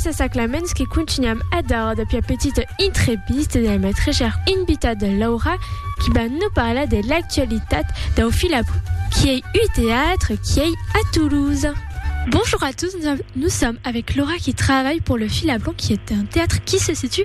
Gràcies a Saclamens que continuam a dar de pia petita intrevista de la matrejar invitada Laura qui va no parlar de l'actualitat dau Filabru qui ei ui teatre qui ei a Toulouse. Bonjour à tous, nous sommes avec Laura qui travaille pour le Filabru qui est un théâtre qui se situe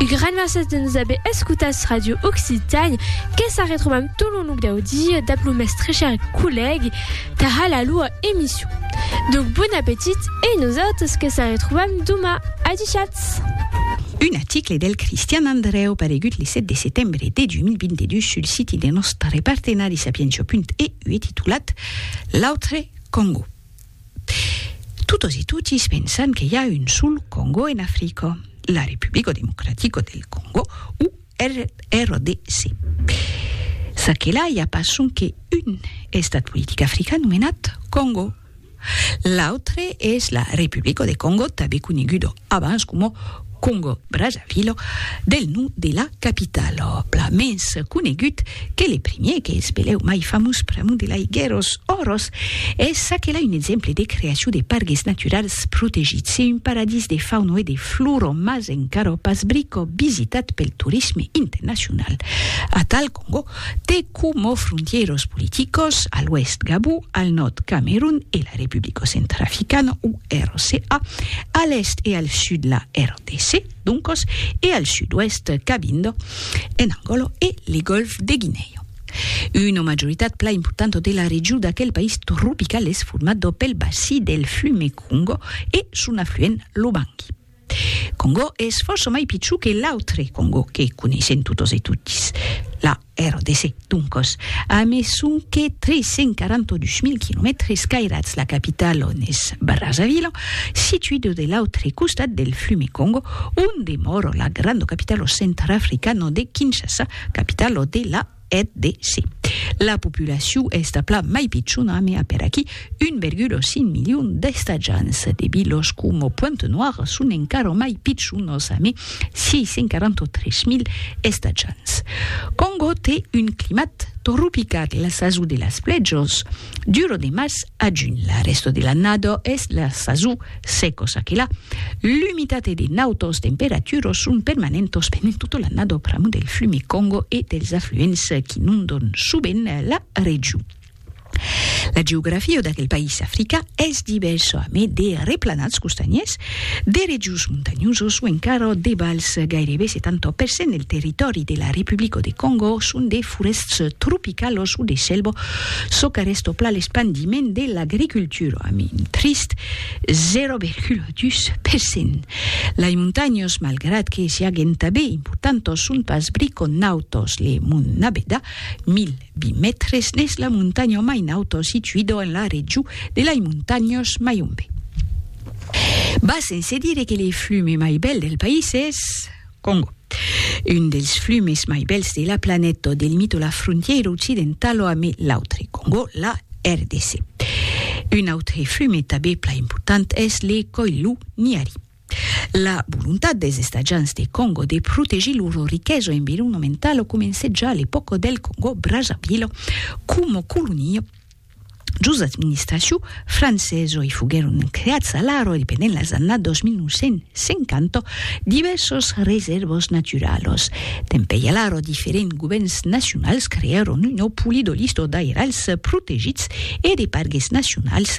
Un gran mercés de nos aver escutats Radio Occitan, que sa retrobam tot lo nuc dau dia dab lo mestre cher collègue tara la loa emission. Donc bon appetit e nosautres que sa retrobam doma. Adichatz! Un article del Cristian Andrèu paregut le 7 de setembre de 2022 sul siti de nòstre partenari Sapientia.eu e titulat L'autre Còngo. Totos e totis pensan que i a un sol Còngo en Africa, la Republico Democratico del Còngo o RDC. Ça que la i a pas sonque un estat politic african nomenat Còngo. L'autre es la Republico de Còngo, tanben coneguda abans coma Congo Brazzaville, del nom de la capitala, plan mens conegut que le primier qu'es belèu mai famós pr'amor de l'aiguèros oros, es aquela un exemple de creacion de pargues naturals protegits e un paradís de fauna e de flora mas encara pas brica visitat pel torisme internacional, atal Congo, te coma frontièros politicos, a l'oèst Gabon, al nòrd Camerun e la Republico Centrafricana o RCA, a l'èst e al sud la RDC, doncos, e al sud-oèst Cabindo en Angòla e le Gòlf de Guinèa. Una majoritat plan importanta de la region d'aquel país tropical es formada pel bací del flume Congo e son afluent l'Obangi. Congo es fòrça mai pichon que l'autre Congo que coneissèm totes e totis, la RDC, doncòs, a mai sonque 342.000 quilomètres cairats, la capitala on es Brazzaville, situida de l'autre costat del flume Congo, on demòra la granda capitala centrafricana de Kinshasa, capitala de la eth de se. La populacion es tà plan mai pichona, me a per aquí 1,5 milion d'estatjants. De vilos coma Pointe Noire son encara mai pichonos a me 643.000 estatjants. Congo te un climat tropical, la sason de las plèjos, Du lo de març a junh, la rèsta de l'annada es la sason seca, ça que la, l'umitat e de nautas temperaturas son permanentas pendent tota l'annada pr'amor del flume Congo e dels afluents qu'inondan sovent la region. La geografia d'aquel país african es divèrsa, amé de replanats costanhers De rejos montanhosos o encara de vals, gairebe 70 per cent del territòri de la Republico de Còngo son de forèsts tropicalos o de selva, çò qu'arrèsta plan l'espandiment de l'agricultura amb un trist 0,2 per cent. Lai montanhos, malgrat que siaguen tanben importantos, son pas briconautos, le Mont Nabeda, 1000. 20 mètres n'es la montanha mai nauta situida en la region de lai montanhas Mayombe. Bas sense dire que le flume mai bèl del país es Congo. Un dels flumes mai bèls de la planeta delimita la frontièira occidentala ame l'autre Congo, la RDC. Un autre flume tabé plan important es le Koilou-Niari. La volontat des estatjants de Còngo de protegir lor riquesa environomentala comencèt ja a l'epòca del Còngo-Brazzavila coma colonia jos administracion francesa e foguèron creats a l'ara independent las annadas 2950 divèrsas resèrvas naturalas. Tanpei a l'ara diferents govèrns nacionals creèron una polidolista d'airals protegits e de pargues nacionals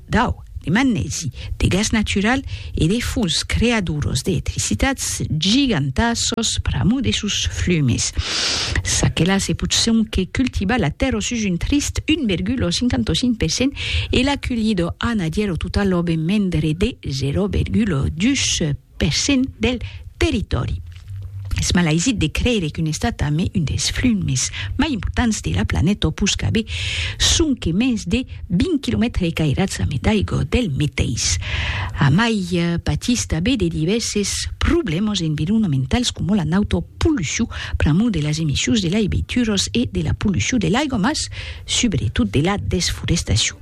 Dau, de magnèsi, de gas natural e de fons creadoros d'eetricitats gigantassos pr'amor de sos flumes. Ça que là se pòt sonque cultivar la tèrra sus un trist 1,55 per cent e la culhida anadièr o tota l'òbe mendre de 0,2 per cent del territòri. Es malaisit de creire qu'un estat amé un dels flums mès mai importants de la planeta pus qu'aver sonque mens de 20 quilomètres cairats amé d'aigua del meteis amai patís tanbé de divèrses problèmas environamentals coma la nauta pollucion pr'amor de las emissions de laiveituras e de la pollucion de l'aigua mas subretot de la desforestacion.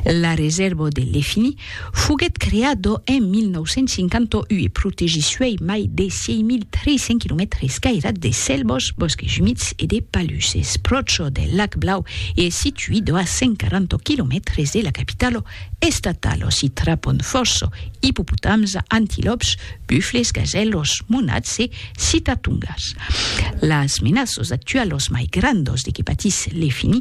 La Reserva de Lefini foguèt creada en 1958 e protegís suèi mai de 6.300 km escairat de selvas, bòsques umids e de palusses, pròcha del Lac Blau e es situida a 140 km de la capitala estatala. S'i trapon fòrça ipopotams, antilòps, bufles, gasèlas, monats e citatungas. Las menaças actualas mai grandas de que patís Lefini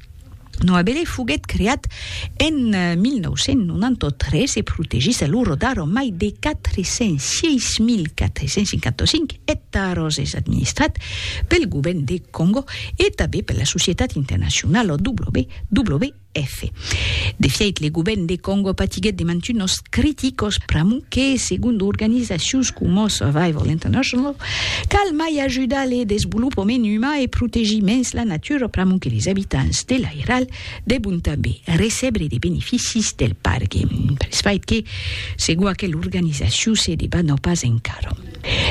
Noabele foguèt creat en 1993 e protegís a l'oro d'Aro mai de 406.455 ectaros, es administrat pel govèrn de Còngo e tanben per la societat internacionala WWF. De fièit, le govèrn de Còngo patiguèt de mantunos criticos pr'amor que, segon d'organizacions coma Survival International, Cal mai ajudar le desvolopament umà e protegir mens la natura pr'amor que les abitants de l'airal debon tanben recebre de beneficis del pargue, pels fait que, segon aquela organizacion, se debana pas encara.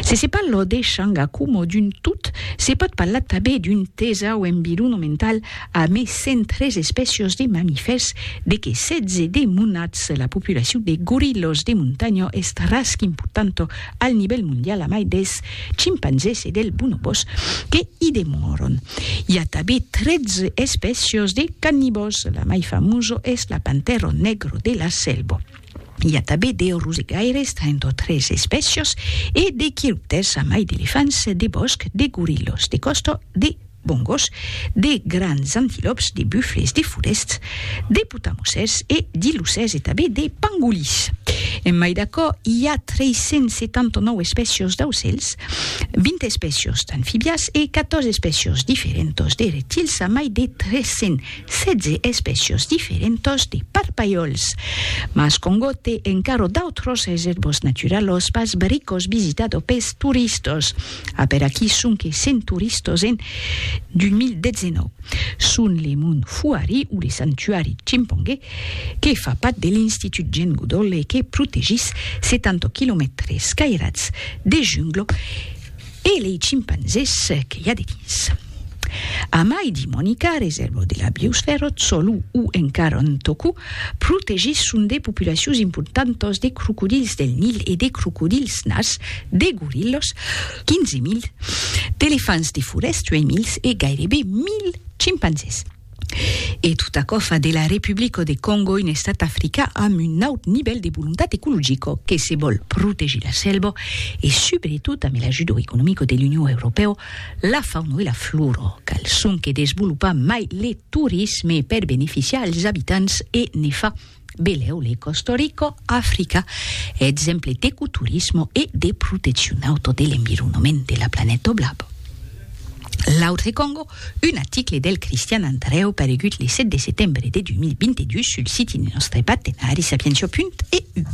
Se se parla de changa coma d'un tot, se pòt parlar tanben d'un tesau environomental a mai 103 espècias de mamifèrs, de qué 16 de monats, la populacion de gorilhas de montanha es tras qu'importanta Al nivèl mondial amai dels chimpanzés e dels bonobòs que i demòron. I a tanben 13 espècias de cannibòs, la mai famosa es la pantèra negra de la selva. I a tanben de rosegaires, 33 espècias, e de quiròptèrs amai d'elefants de bòsc, de gorillas de còsta, de bongos, de grands antilòps, de bufles, de forèsts, de potamosèrs e d'ilusèrs e tanben de pangolins. En mai d'aquò, i a 379 espècios d'aucèls, 20 espècios d'anfibias e 14 espècios diferentas de reptils a mai de 316 espècios diferentas de parpalhòls. Mas Congó te encara d'autras resèrvas naturalas pas barricas visitadas pels toristas. A per aquí sonque cent toristas en 2019. Son le Mont Fuari o le Santuari Chimpange, que fa pat de l'Institut Jane Goodall e que protegís 70 quilomètres cairats de jungla e lei chimpanzés que i a dedins. Amai di Monica, resèrvo de la biosfèra, Tsolu o encara Ntoku, protegís son de populacions importantas de crocodils del Nil e de crocodils nars, de gorillas, 15.000, d'elefants de forèst, 8.000, e gairebe 1.000 chimpanzés. E tot aquò fa de la Republico de Còngo un estat africà amb un naut nivèl de volontat ecologico que se vòl protegir la selva e subretot amb l'ajudo economico de l'Union Europèo la fauna e la flora. Cal sonque desvolopar mai le torisme per beneficiar als abitants e ne fa Belèu le Costa Rico, Africa, exemple d'ecoturismo e de proteccion auto de l'environoment de la planeta Oblab. L'autre Congo, un article del Christian Andreu paregut le 7 de setembre de 2022 sul site de nòstre partenari Sapientia.eu.